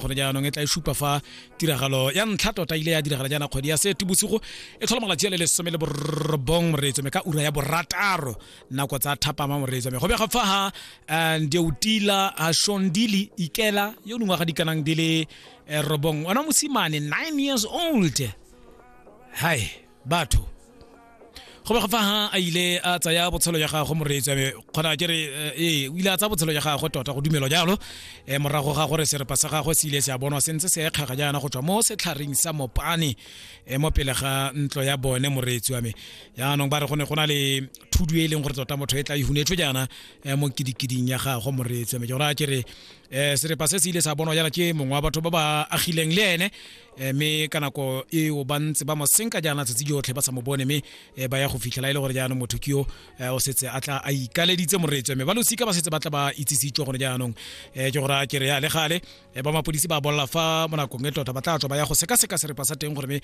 kgone jaanong e tla e supa fa tiragalo ya ntlha tota ile ya diragala jaana kgwedi ya setibosigo e tlhola malatsi a le lesome le borobong moreetso me ka ura ya borataro nako tsa thapama moreetso me go bega fa ha eh, ndeutila ha shondili ikela yo nngwe ga dikanang di le eh, robong ona mosimane 9 years old hai batho go be go fa ha a ile a tsaya botshelo jwa gagwe moreetsi ame kgona ke re eh, ee o ile a tsaya botshelo jwa gagwe tota go dumelwa jalo um morago ga gore serepa sa gagwe se ile se a bonwa sentse se ekgega jaana go tswa mo setlhareng sa mopane um mo pele ga ntlo ya bone moreetsi wa me jaanong ba re go ne go na le thudu e leng gore tota motho e tla ihunetswe jaana um mo kidikiding ya gagwe moreetsi wa me ke gore a ke re um serepa se se ile sa bonwa jaana ke mongwe wa batho ba ba agileng le ene Eh, mme ka nako eo ba ntse ba mosenka jaana tsatsi jotlhe ba sa mo bone mme eh, ba ya go fitlhela e le gore jaanong motho ke yo eh, o setse a tla a ikaleditse moreetswe mme ba losika ba setse ba tla ba itsisitswe gone jaanong ke gore a kere ya le gale ba mapodisi ba bolela fa mo nakong e tota ba tla tswa ba ya go sekaseka serepa sa teng gore mme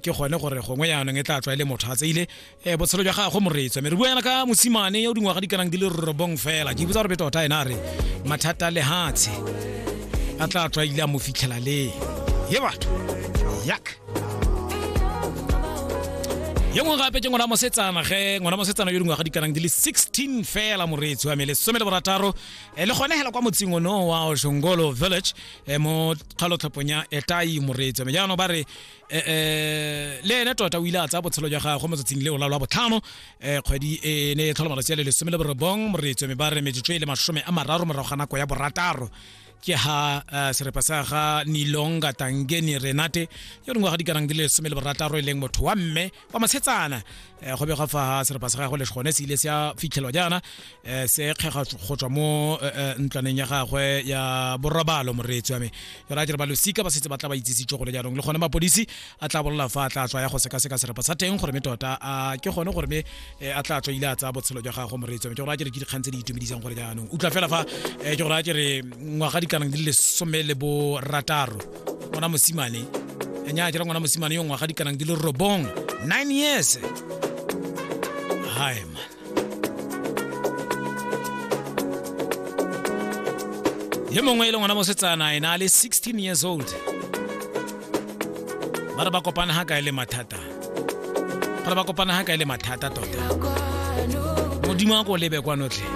ke gone gore gongwe jaanong e tla tswa e le motho a tseile e botshelo jwa gago moreetswa mme re bua yana ka mosimane yo dingwaga di kanang di le robong fela ke botsa gore be tota ene a re mathata lehatshe a tla tswa ile a mo fitlhela le ye batho yak ye mongwe gape ke ngwana mosetsana ge ngwana mosetsana yo dingwaga di kanang di le 16 fela moreetsi wa me lesome le borataro eh, le gone hela kwa motseng ono wa oshongolo village eh, mo kgalotlhopong ya etai moreetsi wa me jaanong ba re eh, eh, le ene tota o ile a tsaya botshelo jwa gagwe motsatsing le o lalwa botlhano um eh, kgwedi e ne e tlhola malatsi a le lesome le borobong moreetso me ba re metsotso e le masome a mararo morago ga nako ya borataro ke ha uh, serepa sa ga nilonga tangeni renate yo dingwaga di karang di le lesome le borataro e leng motho wa mme kwa mashetsana um go begwa fa serepa sa gagwe le gone se ile se a fitlhelwa jaana um se kgega go tswa mo ntlwaneng ya gagwe ya borobalo moreetsi wa me jalo a jere ba losika ba setse ba tla ba itsisitse gore jaanong le gone mapodisi a tla bolola fa a tla tswa ya go sekaseka serepa sa teng gore me tota a ke gone gore me a tla tswa ile a tsaya botshelo jwa gagwe moreetsi wa me ke gore a jere ke dikgang tse di itumedisang gore jaanong utlwa fela fa ke gore a jere ngwaga dikanang di le lesome le borataro ngwana mosimane a nya a dira ngwana mosimane yo ngwaga dikanang di le robong 9 years hi man ye mongwe e le ngwana mosetsana ena a le 16 years old ba re ba kopana ga kae le mathata ba re ba kopana ga kae le mathata tota modimo a ko lebe kwanotlhe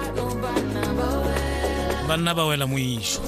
banna ba wela moišo